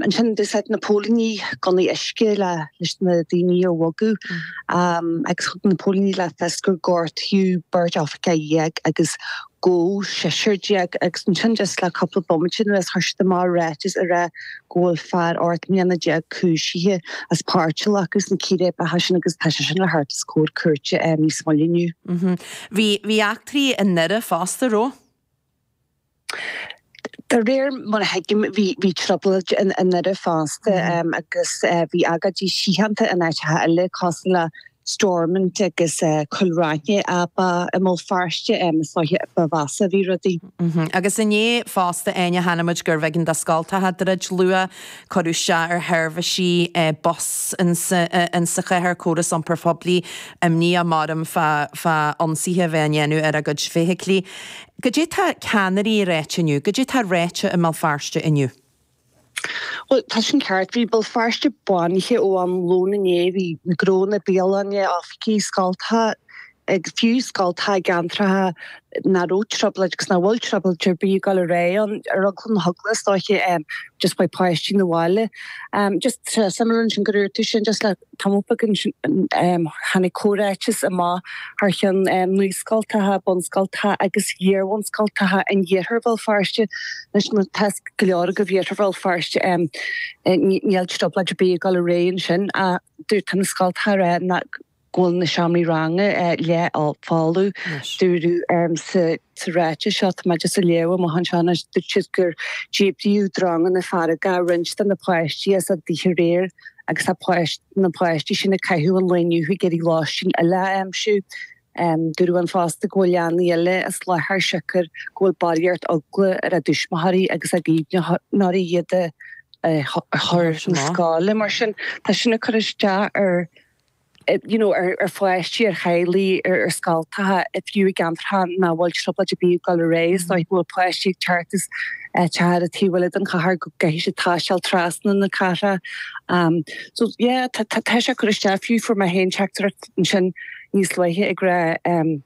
Ansin d'úsáid na póilíní gunnaí uisce le leis na daoine a bhogadh agus thug na póilíní le fios gur gortaíodh beirt oifigeach déag agus gabhadh seisear déag agus ansin just le cúpla bomaite anuas chuir siad amach ráiteas a rá go bhfuil fear ocht mbliana déag cúisithe as páirt a ghlacadh sna círéibeacha sin agus tá sé sin le teacht os comhair cúirte níos moille inniu. Bhí eachtraí i nDoire fosta, an raibh. De réir mar a thuigim bhí trioblóid i nDoire fosta agus bhí agóidí síochánta in áiteacha eile cosúil le Stormont agus Cúil Raithin ach ba i mBéal Feirste is dóiche ba mheasa a bhí rudaí. Agus inné fosta Áine chonaic muid gurbh éigean do scoltacha druid luath, cuireadh isteach ar sheirbhísí bus sa chathair, córas iompair phoiblí imníoch, maram fá ionsaithe a bheith á ndéanamh ar a gcuid feithiclí. Cad é tá ceannairí a ráit inniu? Cad é tá ráite i mBéal Feirste inniu? Bhuel, tá sin ceart. Bhí Béal Feirste bánaithe ó am lón inné. Bhí na gnónna, bialanna, oifigí, scoltacha, fiú scoltacha i gceantracha nach raibh trioblóid agus nach bhfuil trioblóid ar bith ag dul ar aghaidh ann, ar eagla na heagla is dóiche, just beidh páistí na bhaile just tá sé suimiúil ansin gur luaigh tú sin just le. Tamall beag ansin tháinig comhráiteas amach thar cheann Naíscoltacha, Bunscoltacha agus Iarbhunscoltacha in Iarthar Bhéal Feirste. Anois tá a fhios ag go leor agaibh Iarthar Bhéal Feirste níl trioblóid ar bith ag dul ar aghaidh ansin ach dúirt tá na scoltacha ag rá go bhfuil na seomraí ranga leathfholamh. Dúradh sa. Sa ráiteas seo, tá mé just ag léamh amach anseo anois, dúirt siad gur díbríodh dronganna feargacha roinnt de na páistí as a dtithe aréir agus tá páistí, na páistí sin ag caitheamh an lae inniu ag iarraidh lóistín eile a aimsiú. Dúradh ann fosta go bhfuil leanaí eile as láthair siocair go bhfuil barraíocht eagla ar a dtuismitheoirí agus a gcaomhnóirí iad a chur chun na scoile. Mar sin, tá sin ag cur isteach ar. you know, ar pháistí, ar theaghlaigh, ar scoltacha, a fiú i gceantracha nach bhfuil trioblóid ar bith ag dul ar aghaidh. Is dóiche go bhfuil páistí ag teacht is ag teacht ón taobh eile den chathair go gcaithfidh siad taisteal trasna na cathrach. Um, so yeah, tá, tá, tá sé ag cur isteach fiú fuair mé féin teachtaireacht ansin níos luaithe ag rá um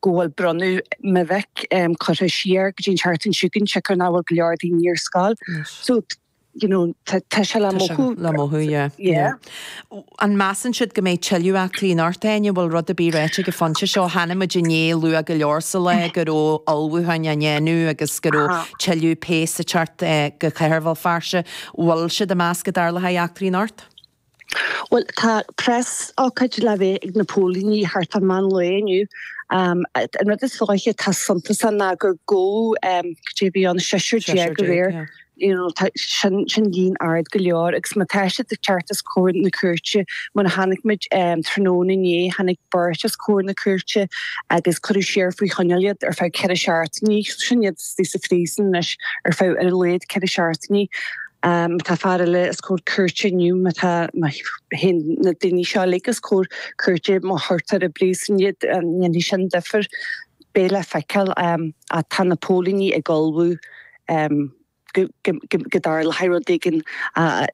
go bhfuil bronnadh mo mhic um curtha siar go dtí an tseachtain seo chugainn, siocair nach bhfuil go leor daoine ar scoil. So, you know, tá sé le mothú. Tá sé le mothú, yeah, yeah. An measann siad go mbeidh tuilleadh eachtraí anocht, Áine? An bhfuil rud ar bith ráite ag an phointe seo? Chonaic muid inné luath go leor sa lá go raibh ullmhúcháin á ndéanamh agus go raibh tuilleadh péas ag teacht go Cathair Bhéal Feirste. An bhfuil siad ag meas go dtarlóidh eachtraí anocht? Bhuel, tá preasócáid le bheith ag na póilíní thart ar meán lae inniu. An rud is dóiche atá suntasach ná gur gabhadh, cad é a bhí ann, seisear déag go léir. Sin líon ard go leor agus má tá siad ag teacht os comhair na cúirte, mar a chonaic muid tráthnóna inné, tháinig beirt os comhair na cúirte agus cuireadh siar faoi choinneáil iad ar feadh ceithre seachtainí. Sin iad istigh sa phríosún anois ar feadh ar a laghad ceithre seachtainí. Má tá fear eile os comhair cúirte inniu, má tá, má théann na daoine seo uilig os comhair cúirte, má chuirtear i bpríosún iad an ndéanfaidh sin difear. Beidh le feiceáil. Ach tá na póilíní ag ullmhú go dtarlóidh rud éigin.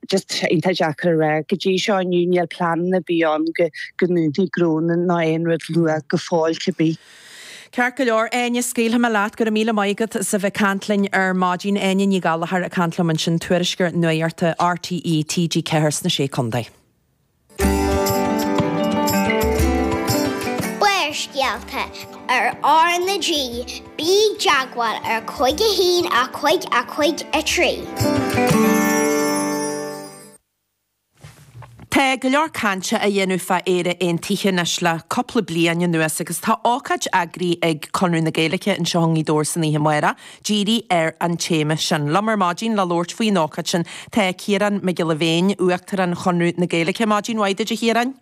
Just iontach deacair a rá go dtí seo inniu, níl pleananna ar bith ann go ndúnfaidh gnónna ná aon rud luath go fóill cibé. Ceart go leor, Áine, scaoilfidh mé leat. Go raibh míle maith agat as a bheith ag caint linn ar maidin. Áine Ní Ghallchóir ag caint liom ansin, tuairisceoir nuachta RTÉ, TG4 sna Sé Contae. Barrscéalta ar R na G Bí i dteagmháil ar Cúig a hAon a Cúig a Cúig a Trí. Tá go leor cainte á dhéanamh fá Éire Aontaithe anois le cúpla bliain anuas agus tá ócáid eagraithe ag Conradh na Gaeilge anseo i nGaoth Dobhair san oíche amáireach díreach ar an téama sin. Liom ar maidin le labhairt faoin ócáid sin tá Ciarán Mac Giolla Bhéin, Uachtarán Chonradh na Gaeilge. Maidin mhaith duit, a Chiaráin.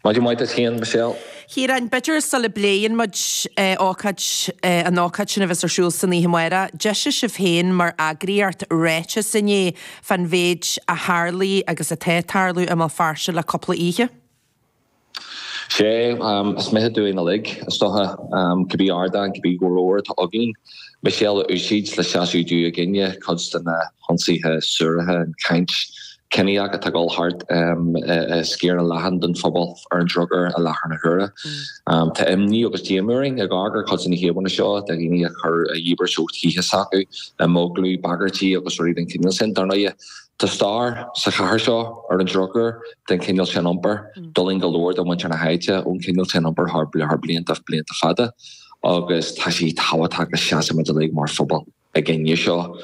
Maidin mhaith duit féin, Michelle. Chiaráin, b'fhéidir sula bpléann muid ócáid, an ócáid sin a bheas ar siúl san oíche amáireach, d'eisigh sibh féin mar eagraíocht ráiteas inné fán mhéid a tharlaigh agus atá ag tarlú i mBéal Feirste le cúpla oíche. Sea, is mithid dúinn uilig, is dócha, cibé ardán, cibé glór atá againn, Michelle a úsáid le seasamh i gcoinne cuid de na. hionsaithe suaraithe, an chaint chiníoch atá ag dul thart i sciar leathan den phobal ar an drochuair i láthair na huaire. Tá imní agus díomá orainn ag amharc ar cuid de na híomhánna seo de dhaoine a chuir a dhíbirt ó thithe s'acu imeaglú, bagairtí agus rudaí den chineál sin. Dar ndóighe, tá stair sa chathair seo ar an drochuair den chineál sin iompair. D'fhulaing go leor de mhuintir na háite ón chineál sin iompair thar blianta fada agus tá sé tábhachtach go seasaimid uilig mar phobal. i gcoinne seo.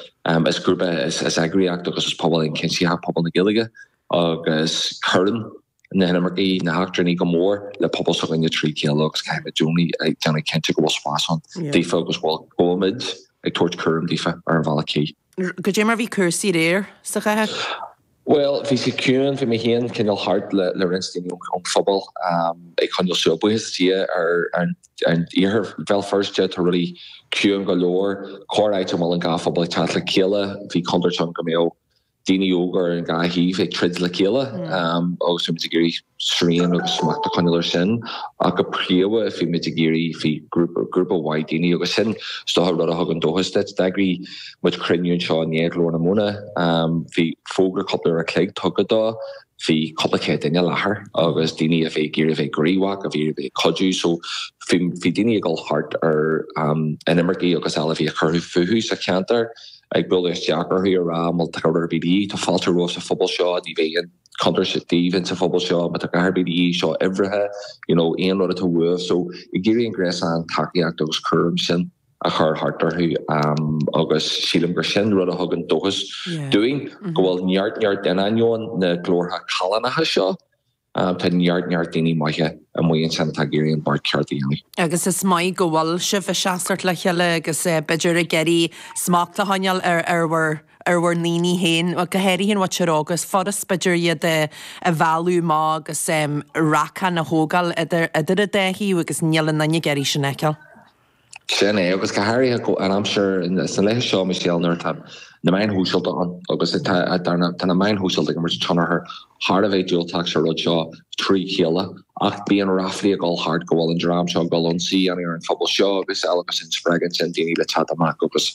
Is grúpa, is eagraíocht agus is pobal ionchuimsitheach pobal na Gaeilge agus cuireann na hinimircigh, na heachtrannaigh go mór le pobal s'againne trí chéile agus caithfimid i gcónaí déanamh cinnte go bhfuil spás ann daofa agus go bhfuilimid ag tabhairt cúram daofa ar an bhealach cuí. Cad é mar bhí cúrsaí aréir sa chathair? Bhuel bhí sé ciúin, bhí mé féin cineál thart le roinnt daoine ón phobal ag coinneáil súil. Buíochas do Dhia ar an iarthar Bhéal Feirste tá rudaí ciúin go leor, corráit a bhfuil an dhá phobal ag teacht le chéile. Bhí contúirt ann go mbeadh daoine óga ar an dhá thaobh ag troid le chéile agus bhí muid ag iarraidh, srian agus smacht a choinneáil air sin ach go príomha bhí muid ag iarraidh bhí grúpa maith daoine agus sin is dócha rud a thugann dóchas duit. D'eagraigh muid cruinniú anseo inné i nGlór na Móna, bhí fógra cúpla uair a chloig tugtha dó, bhí cúpla céad duine i láthair agus daoine a bhí ag iarraidh a bheith gníomhach, a bhí ag iarraidh a bheith ag cuidiú so bhí bhí daoine ag dul thart ar inimircigh agus eile a bhí ag cur fúthu sa cheantar ag bualadh isteach orthu ag rá má tá rud ar bith de dhíth, tá fáilte romhaibh sa phobal seo, ní bheidh aon. chontúirt daoibh ins an phobal seo má tá cabhair de dhíth seo uimhreacha, you know, aon rud atá uaibh. So ag iarraidh an gréasán tacaíocht agus cúram sin a chur thart orthu um, agus sílim gur sin rud a thugann dóchas yeah. dúinn mm -hmm. go bhfuil neart neart in ainneoin na glórtha callánacha seo um, tá neart neart daoine maithe amuigh ansin atá ag iarraidh an beart ceart a dhéanamh. Agus is maith go bhfuil sibh ag seasamh le chéile agus uh, b'fhéidir ag iarraidh smacht a choinneáil ar, ar, ar, ar, ar bhur ndaoine féin, go háirithe an mhuintir óg, is furast b'fhéidir iad a mhealladh amach agus racán a thógáil idir an dá thaobh agus níl aon duine ag iarraidh sin a fheiceáil. Sin é, agus go háirithe an aimsir sna laethe seo Michelle nuair atá na meáin shóisialta ann agus tá na meáin shóisialta ag imirt tionchar Thar a bheith diúltach sa rud seo trí chéile, ach bíonn ráflaí ag dul thart go bhfuil an dream seo ag dul ionsaí a dhéanamh ar an phobal seo agus eile agus sin spreagann sin daoine le teacht amach agus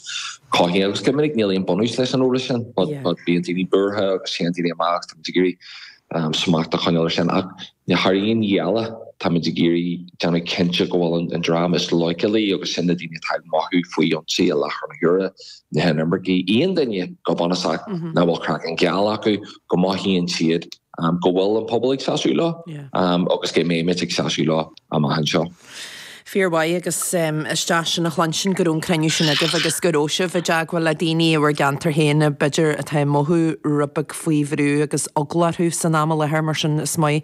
cothaíonn agus go minic níl aon bunús leis an eolas sin but bíonn daoine buartha agus téann daoine amach agus tá muid ag iarraidh smacht a choinneáil ar sin ach thar aon ní eile tá muid ag iarraidh déanamh cinnte go bhfuil an dream is leochailí agus sin na daoine atá ag mothú faoi ionsaí i láthair na huaire na hinimircigh, aon duine go bunúsach nach bhfuil craiceann geal acu, go mothaíonn siad go bhfuil an pobal ag seasamh leo agus go mbeidh muid ag seasamh leo amach anseo. Fíormhaith agus is deas sin a chluinstin go raibh an cruinniú sin agaibh agus go raibh sibh i dteagmháil le daoine i bhur gceantar féin b'fhéidir atá ag mothú rud beag faoi bhrú agus eagla orthu san am i láthair, mar sin is maith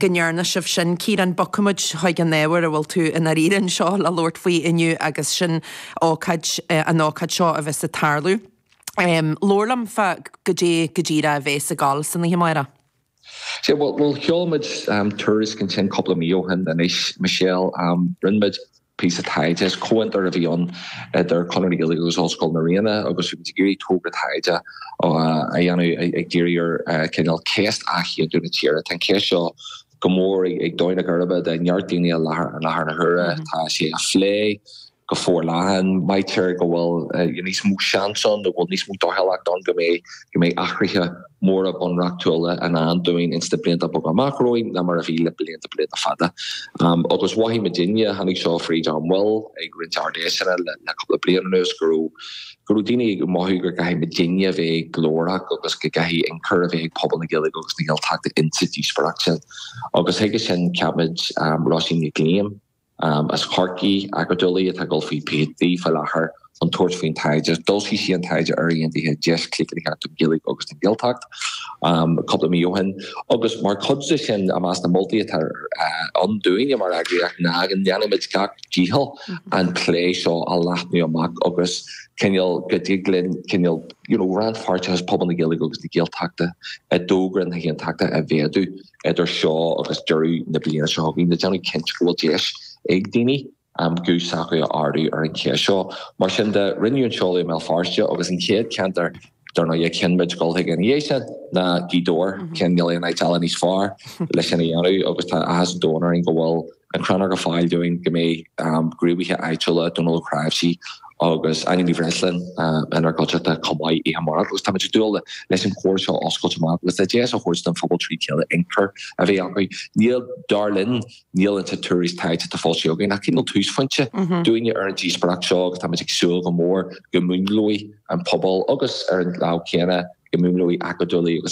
go ndearna sibh sin. Ciarán, bogfaidh muid chuig an ábhar a bhfuil tú i ndáiríre anseo le labhairt faoi inniu agus sin ócáid an ócáid seo a bheas ag tarlú. Labhair liom fá cad é go díreach a bheas ag dul san oíche amárach. Sé, bhuel, bhuel sheol muid tuairisc ansin cúpla mí ó shin anois, Michelle, rinne muid píosa taighde, is comhfhiontar a bhí ann idir Conradh na Gaeilge agus Ollscoil na Ríona agus bhí muid ag iarraidh togra taighde a dhéanamh ag díriú ar cineál ceist athaontú na tíre. Tá an cheist seo go mór ag dó na geirbe de neart daoine i láthair i láthair na huaire. Tá sé á phlé go forleathan. Maítear go bhfuil níos mó seans ann nó go bhfuil níos mó dóchúlacht ann go mbeidh go mbeidh athruithe móra bunreachtúla i ndán dúinn ins na blianta beaga amach romhainn ná mar a bhí le blianta blianta fada. Agus mhothaigh muidinne, tháinig seo fríd ónár mbaill ag roinnt Ard-Fheiseanna le cúpla bliain anuas go raibh go raibh daoine ag mothú go gcaithfidh muidinne a bheith glórach agus go gcaithfidh ionchur a bheith ag pobal na Gaeilge agus na Gaeltachta insa díospóireacht sin. Agus chuige sin cheap muid Róisín Nic Liam as Corcaigh, acadúlaí atá ag dul faoi PhD faoi láthair, chun tabhairt faoin taighde. D'fhoilsigh sí an taighde Éire Aontaithe deis chlaochlaitheach don Ghaeilge agus don Ghaeltacht cúpla mí ó shin. Agus mar chuid de sin, i measc na moltaí atá ann dúinne mar eagraíocht ná go ndéanfaimid gach dícheall an plé seo a leathnú amach agus cineál go dtig linn cineál you know, rannpháirteachas pobal na Gaeilge agus na Gaeltachta i dtogra na hAontachta a mhéadú idir seo agus deireadh na bliana seo chugainn ag déanamh cinnte go bhfuil deis ag daoine an um, guth s'acu a ardú ar an cheist seo. Mar sin de, rinneadh an seoladh i mBéal Feirste agus an chéad ceantar Dar ndóigh, a chinn muid gabháil chuige ina dhiaidh sin ná Gaoth Dobhair, cineál níl aon áit eile níos fearr le sin a dhéanamh agus tá áthas an domhain orainn go bhfuil an Chrannóg ar fáil dúinn go mbeidh gníomhaithe áitiúla, Dónal Ó Cnáimhsí agus Áine Ní Bhreisleáin, inár gcuideachta chomh maith oíche amárach agus táimid ag dúil leis an chomhrá seo a oscailt amach agus le deis a thabhairt don phobal trí chéile ionchur a bheith acu. Níl, dar linn, Níl insan tuairisc taighde atá foilsithe againn ach cineál túsphointe dúinne ar an díospóireacht seo agus táimid ag súil go mór go múnlóidh an pobal agus ar an lámh chéanna go múnlóidh acadúlaigh agus